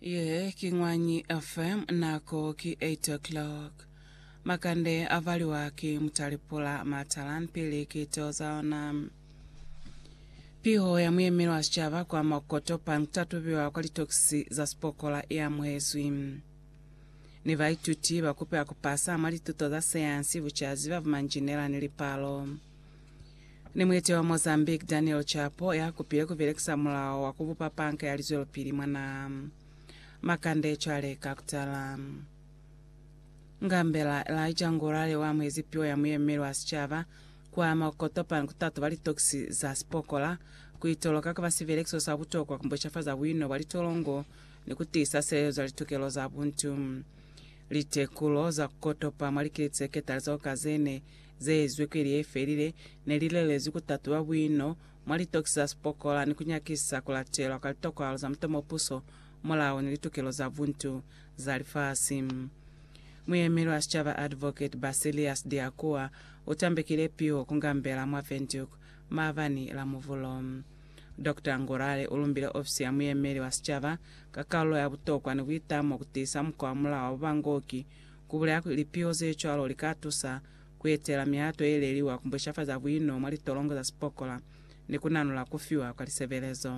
Ye ki Ñwanyi FM, nako ki 8 o'clock. Makande a valiwa ki Mutalipula Matalan pili ki teo za ona. Piho ya muyemeli wa sicaba kwa Makoto pa kutatubiwa kwa litokisi za sipokola i amuhezwi. Ni baituti ba kupela ku pasa mwa lituto za sayansi, bucazi, ba bumanjinela ni lipalo. Ni muiti wa Mozambique Daniel Chapo ya kupile ku belekisa mulao wa ku bupa panka ya lizwelopili mwa naha. Makande cwale ka kutala. Ngambela Elijah Ngurare wa amuhezi piwa ya muyemeli wa sicaba kwa Mokotopane ku tatoba litokisi za sipokola, ku itoloka kuba sibelekiso sa butokwa ku mbocafaza buino bwa litolongo ni ku tiisa silezo za litukelo za buntu. Litekulo za ku kotopa mwa likili tse ketali zeo kazene ze ezwi kwili ye felile, ne li lelezwi ku tatuba buino mwa litokisi za sipokola ni ku nyakisa ku latelwa kwa litokwalo za mutomo puso, mulao ni litukelo za buntu za lifasi. Muyemeli wa sicaba Advocate Basilius Diakua u tambekile piho ku ngambela mwa Windhoek maabani la Muvulo. Doctor Ngurare u lumbile ofisi ya muyemeli wa sicaba ka kalulo ya butokwa ni buitamo ku tiisa mukwa wa mulao wa bubangoki Ku bulaya kuli lipiho ze cwalo li ka tusa ku etela mihato ye leliwa ku bushafaza buino mwa litolongo za sipokola ni ku nanula ku fiwa kwa lisebelezo.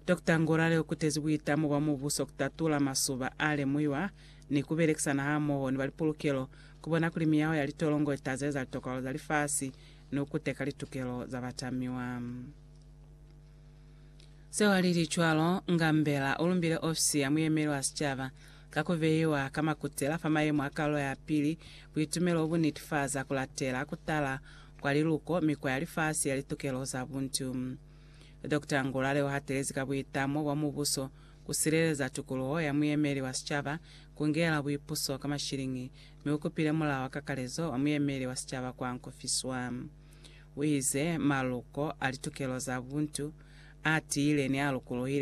Dokta Ngorale u kutezi buitamo bwa mubuso ku tatula masuba a lemuhiwa ni ku belekisana hamoho ni ba lipulukelo ku bona kuli miyaho ya litolongo i tazeza litokwalo za lifasi ni ku kuteka litukelo za batamiwa. Seo lili cwalo, Ngambela ulumbile ofisi ya muyemeli wa sicaba ka kubeiwa ka makutela fa mayemo a kalo ya pili, buitumelo obu nitifaza kulatela kutala kwa liluko mi kwa ya lifasi ya litukelo za buntu. Doctor Ngulale uhatelezi ka buitamo bwa mubuso kusileleza tukuluho ya muyemeli wa sicaba kungela buipuso ka mashilingi, mi ukupile mulao wa kakalezo wa muyemeli wa sicaba kwa nkufiswa. Uize, Maluko a litukelo za buntu, a tiile ni a lukuluhile